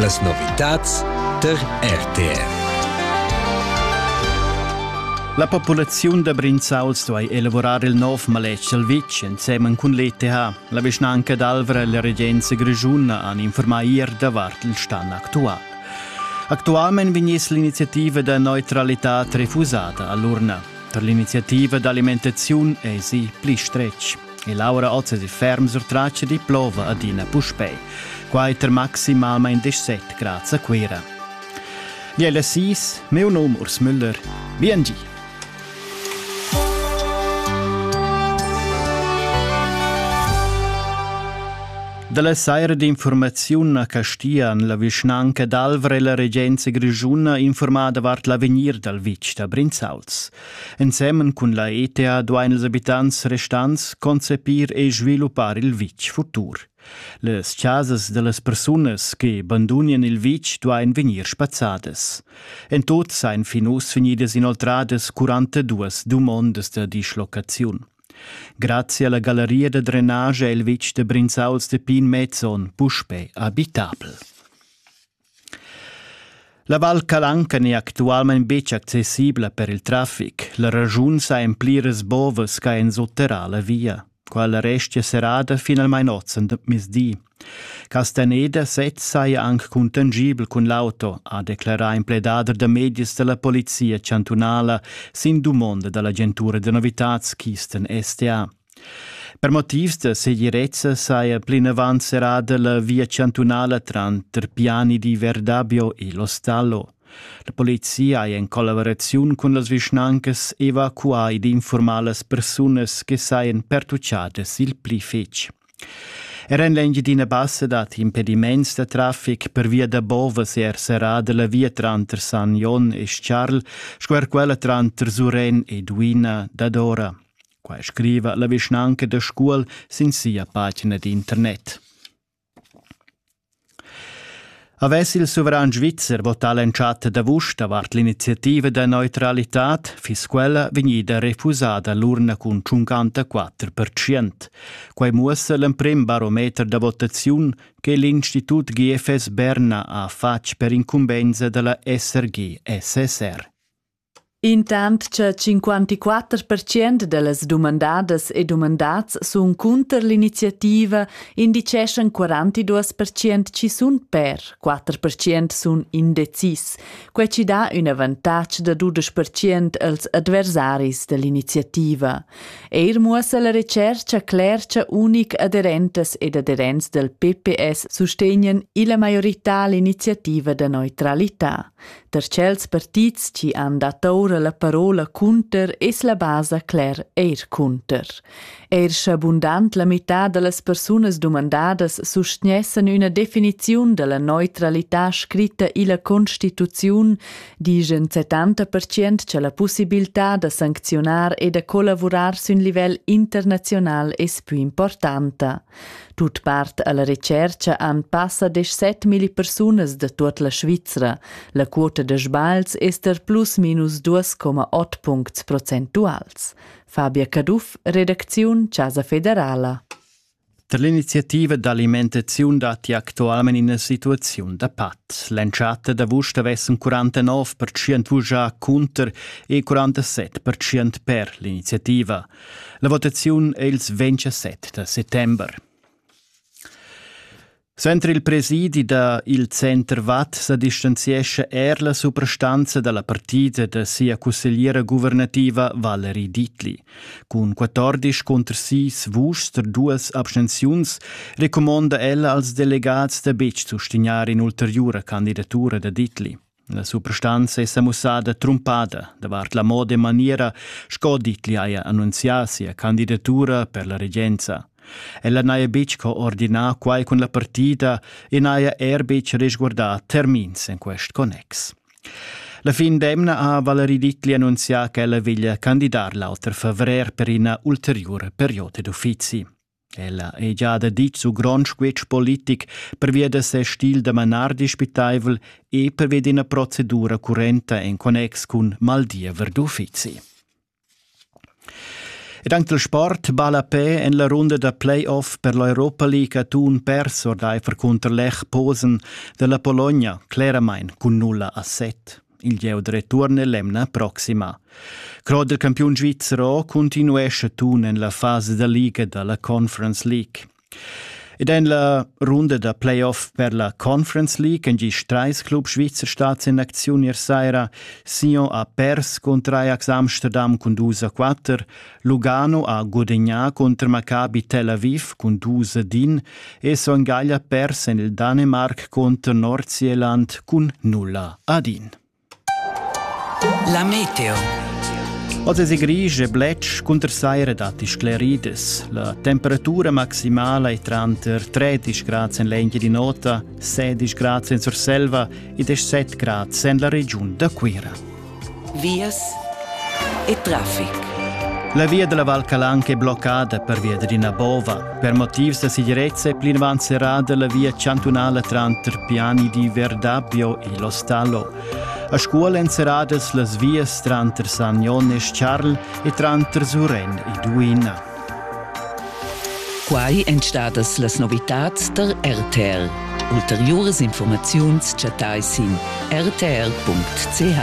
Las novitads tar RTV. La populaziun da Brinzauls duai elavurar il nov maletg dal vitg ensemen cun l'ETH. La vischnanca d'Alvra e la regenza grischuna han informà ier davart il stan actual. Actualmain vegniss l'iniziativa da neutralità refusada a l'urna. Per l'iniziativa d'alimentaziun èsi pli stretg. E Laura ozesi ferm surtratg di plova adina puspei. Quai ter maximalmein 17 grad a Cuira. Biella Sis, meu nom Urs Müller. Bien gi! Dalla saira d'informaziun a Castian la vischnanca d'Alvra e la regenza grischuna informa davart l'avegnir dal vitg da Brinzauls. Ensemen cun la ETA duain ils abitants restants concepir e sviluppar il vitg futur. Las chasas da las persunas che bandunian il vitg duain vegnir spazzadas. En tut sain fin uss vegnidas inoltradas 42 dumondas da dislocaziun. Grazie alla galleria da drenage è il vitg da Brinzauls de Pin Mezzon puspè abitabel. La Val Calanca n'è actualmain betg accessibla per il traffic. La raschun sa en pliras bovas ch'ha ensuterrà la via. Quella restia serrada finalmain ozen mezdi. Castaneda sez saja anc contangibel cun l'auto, ha declarà in pledader da medias da la polizia chantunala sin dumonda da l'agentura da novitads Kisten STA. Per motivs da segirezza saja plinavant serrada la via chantunala tranter Piani di Verdabio e L'Ostallo. La polizia ha en collaboraziun cun las vischnancas evacuà ed informaà las persunas che sajan pertuchadas il pli fitg. Era en l'Engiadina Bassa dat impediments da traffic per via da Bovas er serrada la via tranter San Jon e Charl sco er quella tranter Suren ed Uina dadora. Quai scriva la vischnanca da Scuol sin sia pagina d'internet. Avess il suveran svizzer votà l'entschatta d'avust davart l'iniziativa da neutralitad, fiss quella vegnida refusada l'urna cun 54%. Quai muossa l'emprim barometer da votaziun che l'Institut GFS Berna ha fatg per incumbensa dalla SRG-SSR. Intant cha 54 pertschient da las dumandadas e dumandats sun cunter l'iniziativa, indicheschan 42 pertschient chi sun per, 4 pertschient sun indecis. Quai chi dà ün avantatg da dudesch pertschient als adversaris da l'iniziativa. Eir muossa la retschercha cler cha unic aderentas ed aderents dal PPS sustegnan illa maiorità l'iniziativa da neutralità. Da tschels partits chi han dat oura la parola cunter es la basa cler eir cunter. Eir scha bundant la mità da las persunas dumandadas sustgnessan üna definiziun da la neutralità scritta illa Constituziun, dischan 70% cha la pussibiltà da sancziunar e da collavurar sün livel internaziunal es pü importanta. Tut part alla retscherca han passa desch set milli persunas da tut la Svizra. La quota da sbagls ester plus minus 2,8 puncts procentuals. Fabia Caduff, redacziun Casa Federala. Per l'iniziativa d'alimentaziun datti actualment ina situaziun da pat. L'entschatta d'avust avessen 49% vugià cunter e 47% per l'iniziativa. La votaziun è ils 27 da settember. Suenter il presidi da il Centerwatt sa distanziescha er la suprastanza dalla partida da sia cussegliera guvernativa Valerie Dietli. Cun 14 contr 6 vuschs per duas abstenziuns recumonda ella als delegats da betg sustignar in'ulteriura candidatura da Dietli. La suprastanza è sa mussada trumpada davart la moda e maniera sco Dietli haja annunzià sia candidatura per la regenza. Ella n'haja betg co ordinà quai cun la partida e n'haja er betg resguardà termins en quest connex. La fin d'emna ha Valerie Dietli annunzià ch'ella veglia candidar l'auter favrer per ina ulteriura perioda d'uffizi. Ella ei gia da ditg su grond squetsch politic pervia da ses stil da manar dispitaivel e pervia d'ina procedura currenta en connex cun maldiever d'uffizi. Ed anche il sport balla pe en la runda da playoff per l'Europa League atun pers ordaifer cunter Lech Posen della Polonia, claramain cun nulla a set. Il gieu return è l'emna proxima. Croder campiun svizzer continuescha tun en la fasa da liga da la Conference League. Ed en la runda da playoff per la Conference League en gis treis Club Schweizer stads in acziun ier saira. Sion ha pers cun Ajax Amsterdam cun dus a quatter, Lugano ha gudagnà contra Maccabi Tel Aviv cun dus ad in e Son Gaglia pers en il Danemarc contro Nordsjælland cun nulla ad in. La meteo. Oz è gris e blec cunter saira datti sclerides. La temperatura maximala è tranter 13 grad en l'Engia di Nota, 16 grad en Surselva ed 7 grad en la regiun da Cuira. vias e traffic. La via della Val Calanca è bloccata pervia d'ina bova. Per motivs da sicurezza è plinavant serrada la via chantunala tranter Piani di Verdabbio e L'Ostallo. A Scuol èn serradas las vias tranter San Jon e Charl e tranter Suren e Duina. Quai èn stadas las novitads tar RTL. Ulteriuras informaziuns chattai sin rtl.ch.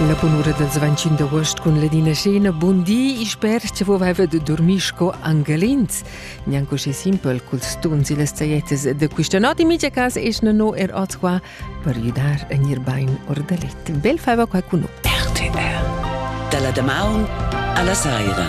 Una bunura dals 25 d'agost cun Ledina Scena. Bun di, sper che vova haver de dormir sco angelins. Gnanco sche simpel culs tuns e las saietas de questa notte. In mica cas es no er oz qua per gidar a gnir bain our da let. Bel faiva qualcun. RTR. Da la damaun a la saira.